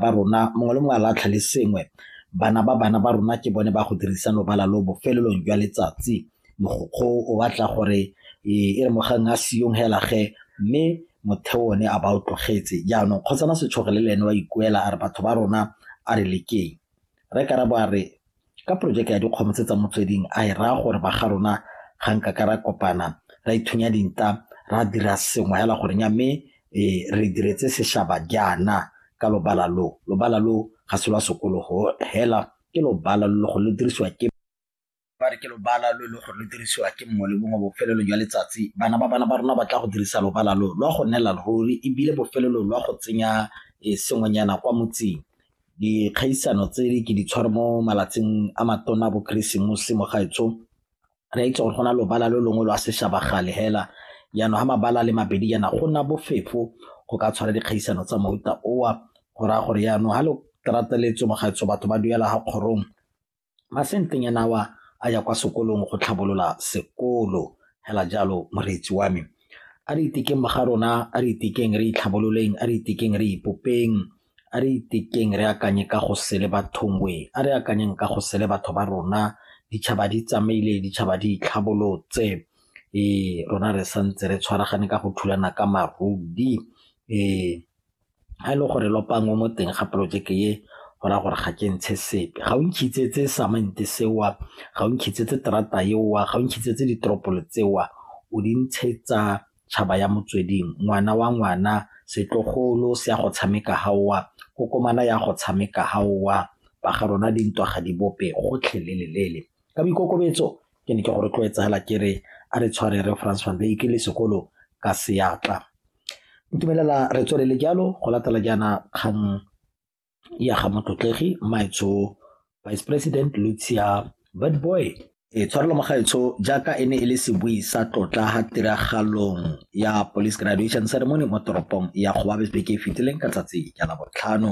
ba rona mongwe le mongwe a latlha le sengwe bana ba bana ba rona ke bone ba go dirisa lobala lo bofelelong jwa letsatsi mogokgo o batla gore e e re mogang a siyong hela ge mme motheo one a ba o tlogetse jaanong kgotsana setshoge le le ene wa ikuela a re batho ba rona a re lekeng re karabo a re ka porojeke ya dikgomo tse tsa motsweding a e raya gore ba ga rona ga nka ka ra kopana ra ithunya dinta ra dira sengwe hela gore nya mme e, re diretse seshaba jaana ka lobala lo lobala lo ga se lwa sekologo hela ke lobala lo go lo dirisiwa ke ba re ke lobala lo e le gore lo dirisiwa ke mongwe le mongwe bofelelo jwa letsatsi bana ba bana ba rona ba tla go dirisa lobala lo lwa go nela ruri ebile bofelelo lwa go tsenya e, sengwenyana kwa motseng dikgaisano tse ke di tshware mo malatsing a matona bo keresemose mo gaetsho re a itse gore go na lobala lo longwe lo a seshabagale hela jaanong ga mabala le mabedi jaana go nna bofefo go ka tshwara dikgaisano tsa mofuta owa go raya gore jaanong ga lo tratseletse mo gaetsho batho ba duela ga kgorong Masentenyana awa a ya kwa sekolong go tlhabolola sekolo, hela jalo moreetsi wa me. A re itekeng mo ga rona, a re itekeng re itlhabololeng, a re itekeng re ipopeng, a re itekeng re akanye ka go sele bathongwe, a re akanyeng ka go sele batho ba rona. Ditšhaba di tsamaile, ditšhaba di itlhabolotse, ee rona re santse re tshwaragane ka go thulana ka maruri, ee. Ga e le gore lopanngwe mo teng ga porojeke e, go raya gore ga ke ntshe sepe. Ga o nkhitsetse samente seo, ga o nkhitsetse terata eo, ga o nkhitsetse diteropolo tseo, o di ntshetsa tšhaba ya motsweding, ngwana wa ngwana, setlogolo se ya go tshameka fa o, kokomane e ya go tshameka fa o, ba ga rona dintwa ga di bope gotlhelele. Ka boikokobetso ke ne ke go rotloetsa fela ke re a re tshware Rre Frans Van Wyk le sekolo ka seatla. Ntumelela re tswelele jalo go latela jaana kgang ya ga Motlotlegi Maetsho Vice President Lucia Bad Boy. E tshwarelo magaetsho jaaka e ne e le sebui sa tlotla ha tiragalong ya Police Graduation Ceremony mo toropong ya Gowabesbeke e fetileng ka tsatsi ya Labotlhano.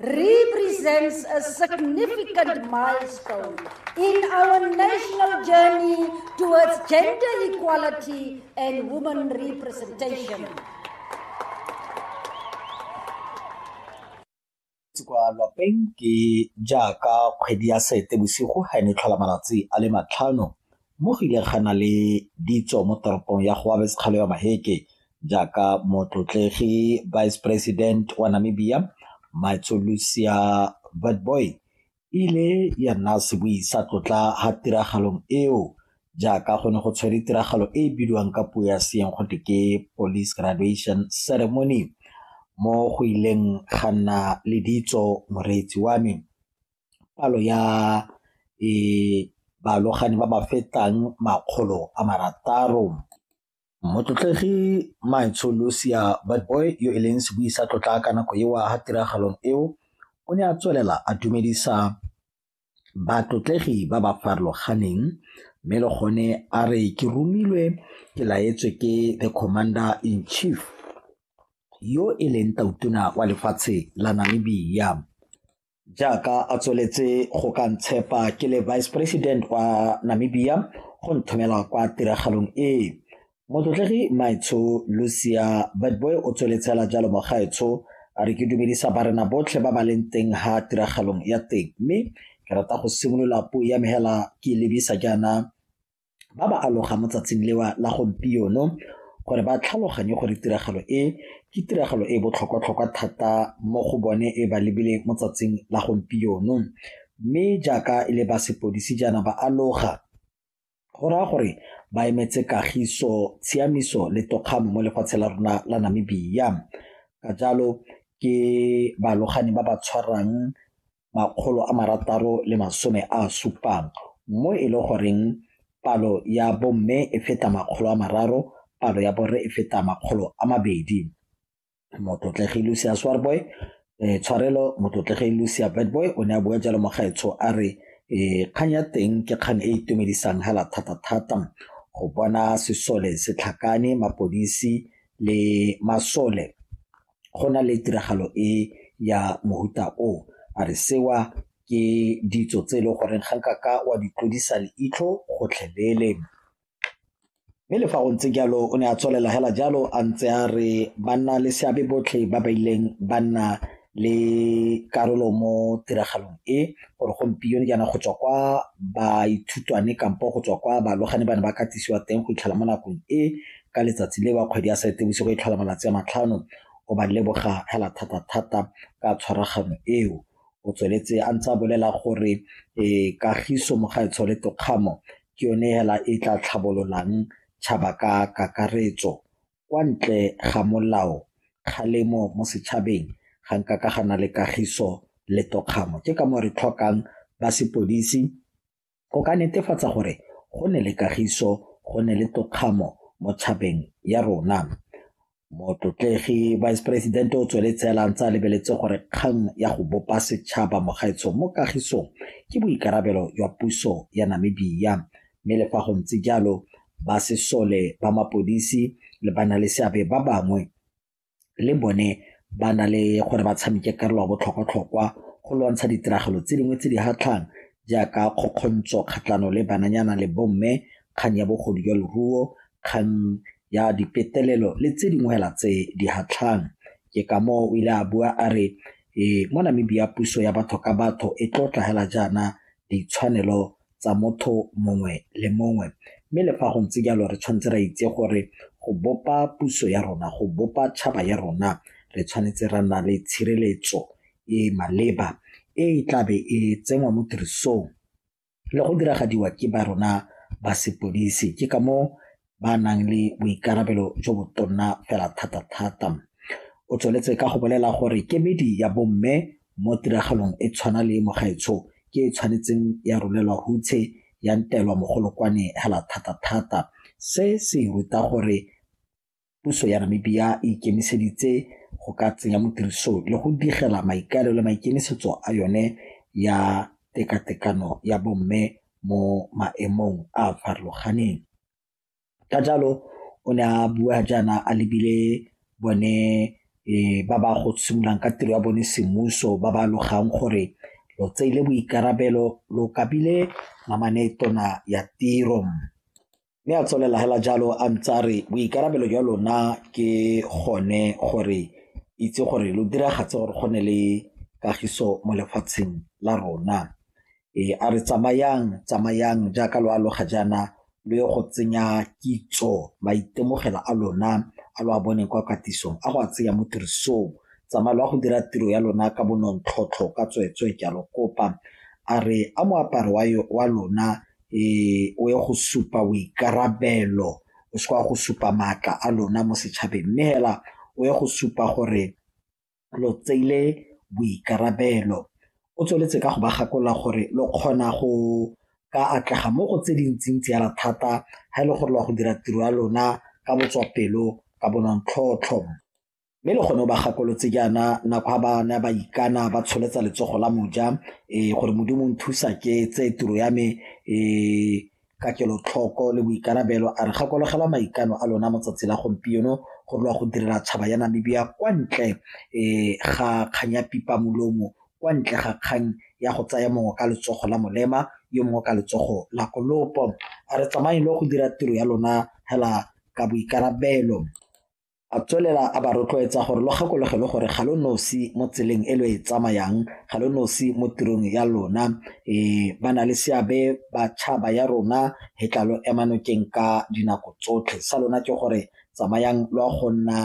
represents a significant milestone in our national journey towards gender equality and women representation. kwa lapeng ke jaaka kgwedi ya sete bosigo ga e ne tlhola malatsi a le matlhano Mo go ile ga na le ditso mo toropong ya go Abes Kgalewa Maheke jaaka motlotlegi Vice President wa Namibia Matsolusia Witbooi ile ya nna sebui sa tlotla ha tiragalong eo jaaka go ne go tshwere tiragalo e e bidiwang ka puo ya seeng go te ke police graduation ceremony mo go ileng ga nna le ditso moreetsi wa me palo ya balogane ba ba fetang makgolo a marataro. Motlotlegi Maetsho Lucia Witbooi yo e leng sebui sa tlotla ka nako eo ga tiragalong eo o ne a tswelela a dumedisa batlotlegi ba ba farologaneng mme le gone a re ke romilwe ke laetswe ke the commander in chief yo e leng tautona wa lefatshe la Namibia. jaaka a tsweletse go ka ntshepa ke le vice president wa namibia go nthomela kwa tiragalong e motlotlegi maetsho lucia badboy o tsweletsela jalo mogaetsho a re ke dumedisa barena botlhe ba ba leng teng ha tiragalong ya teng mme ke rata go simolola puo ya mehela ke lebisa jaana ba ba aloga mo tsatsing lewa la gompieno gore ba tlhaloganye gore tiragalo e ke tiragalo e botlhokwa-tlhokwa thata mo go bone e ba lebile mo tsatsing la gompieno mme jaaka e le ba sepodisi jaana ba aloga go raya gore ba emetse kagiso tshiamiso le tokgamo mo lefatshe la rona la namibia ka jalo ke balogani ba ba tshwarang 670 mo e le goreng palo ya bomme e feta makgolo a mararo, palo ya borre e feta makgolo a mabedi. Motlotlegi Lucia Swarboy, eh, tshwarelo motlotlegi Lucia Bedboy o ne a bua jalo mogaetsho a re eh, kgang ya teng ke kgang e e itumedisang hela thata-thata go bona sesole se tlhakane mapodisi le masole go na le tiragalo e ya mohuta o a re sewa ke ditso tse e leng gore ga nka ka wa di tlodisa leitlho gotlhelele mme le fa go ntse jalo o ne a tswelela hela jalo a ntse a re banna le seabe botlhe ba ba ileng ba nna le karolo mo tiragalong e gore gompieno jaana go tswa kwa baithutwane kampo go tswa kwa balogane ba ne ba katisiwa teng go itlhela mo nakong e ka letsatsi le wa kgwedi ya Seetebosigo e tlhola malatsi a matlhano o ba leboga fela thata-thata ka tshwaragano eo o tsweletse a ntse a bolela gore e kagiso mo gaetsho le tokgamo ke yone fela e tla tlhabololang tšhaba ka kakaretso kwa ntle ga molao kgalemo mo setšhabeng ga nka ka ga na le kagiso le tokgamo ke ka mo re tlhokang ba sepodisi go ka netefatsa gore go ne le kagiso go ne le tokgamo mo tšhabeng ya rona motlotlegi vice president o tsweletse a lantse a lebeletse gore kgang ya go bopa setšhaba mogaetsho mo kagisong ke boikarabelo jwa puso ya namibia mme le fa go ntse jalo ba sesole ba mapodisi le ba na le seabe ba bangwe le bone ba na le gore ba tshameke karolo ya botlhokwatlhokwa go lwantsha ditiragalo tse dingwe tse di hatlhang jaaka kgokgontsho kgatlhano le bananyana le bomme kgang ya bogodu jwa leruo kgang ya dipetelelo le tse dingwe hela tse di hatlhang ke ka moo o ile a bua a re ee mo namibia puso ya batho ka batho e tlotla hela jaana ditshwanelo tsa motho mongwe le mongwe mme le fa go ntse jalo re tshwanetse ra itse gore go bopa puso ya rona go bopa tšhaba ya rona re tshwanetse ra nna le tshireletso e e maleba e e tlabe e tsenngwa mo tirisong le go diragadiwa ke ba rona ba sepodisi ke ka moo ba nang le boikarabelo jo bo tonna fela thata-thata. O tsweletse ka go bolela gore kemedi ya bomme mo tiragalong e tshwana le mogaetsho ke e tshwanetseng ya rolelwa hutshe ya ntelwa mogolokwane hela thata-thata. Se se ruta gore puso ya Namibia e ikemiseditse go ka tsenya mo tirisong le go digela maikaelelo le maikemisetso a yone ya tekatekano ya bomme mo maemong a a farologaneng. Ka jalo o ne a bua jaana a lebile bone ba ba go simololang ka tiro ya bone semmuso ba ba alogang gore lo tseile boikarabelo lokabile namane tona ya tiro. Mme a tswelela hela jalo a ntse a re boikarabelo jwa lona ke gone gore itse gore lo diragatse gore go ne le kagiso mo lefatsheng la rona. E a re tsamayang, tsamayang jaaka lo aloga jaana lo ye go tsenya kitso, maitemogelo a lona a lo a boneng kwa katisong a go a tsenya mo tirisong. Tsamaya lo ya go dira tiro ya lona ka bonontlhotlho ka tsweetswee ke a lo kopa. A re a moaparo wa lona e o ye go supa boikarabelo o se kwa go supa maatla a lona mo setšhabeng mme hela o ye go supa gore lo tseile boikarabelo o tsweletse ka go ba gakolola gore lo kgona go ka atlega mo go tse dintsintsi yana thata ga e le gore lo ya go dira tiro ya lona ka botswapelo ka bonontlhotlho. mme le gone o ba gakolotse jaana nako ga ba ne ba ikana ba tsholetsa letsogo la moja um gore modimo nthusa ke tse tiro ya me um ka kelotlhoko le boikarabelo a re gakologelwa maikano a lona motsatsi la gompieno go lwa go direla tšhaba ya namibia kwa ntle um ga kgang ya pipa molomo kwa ntle ga kgang ya go tsaya mongwe ka letsogo la molema yo mongwe ka letsogo la kolopo a re tsamaye le go dira tiro ya lona hela ka boikarabelo A tswelela a ba rotloetsa gore lo gakologe le gore ga lo nosi mo tseleng e lo e tsamayang, ga lo nosi mo tirong ya lona. E ba na le seabe batšhaba ya rona he tla lo ema nokeng ka dinako tsotlhe. Sa lona ke gore tsamayang lo a go nna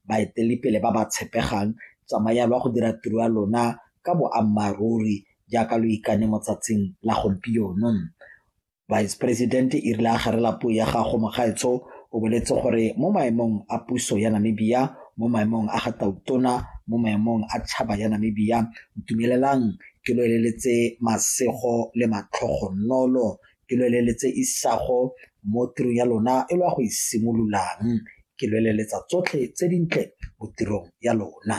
baeteledipele ba ba tshepegang, tsamayang lo a go dira tiro ya lona ka boammaaruri jaaka lo ikane mo tsatsing la gompieno. Vice President e rile a garela puo ya gago mogaetsho o boletse gore mo maemong a puso ya Namibia mo maemong a ga tautona mo maemong a tšhaba ya Namibia ntumelelang ke lo eleletse masego le matlhogonolo ke lo eleletse isago mo tirong ya lona e lo ya go isimololang e ke lo eleletsa tsotlhe tse dintle mo tirong ya lona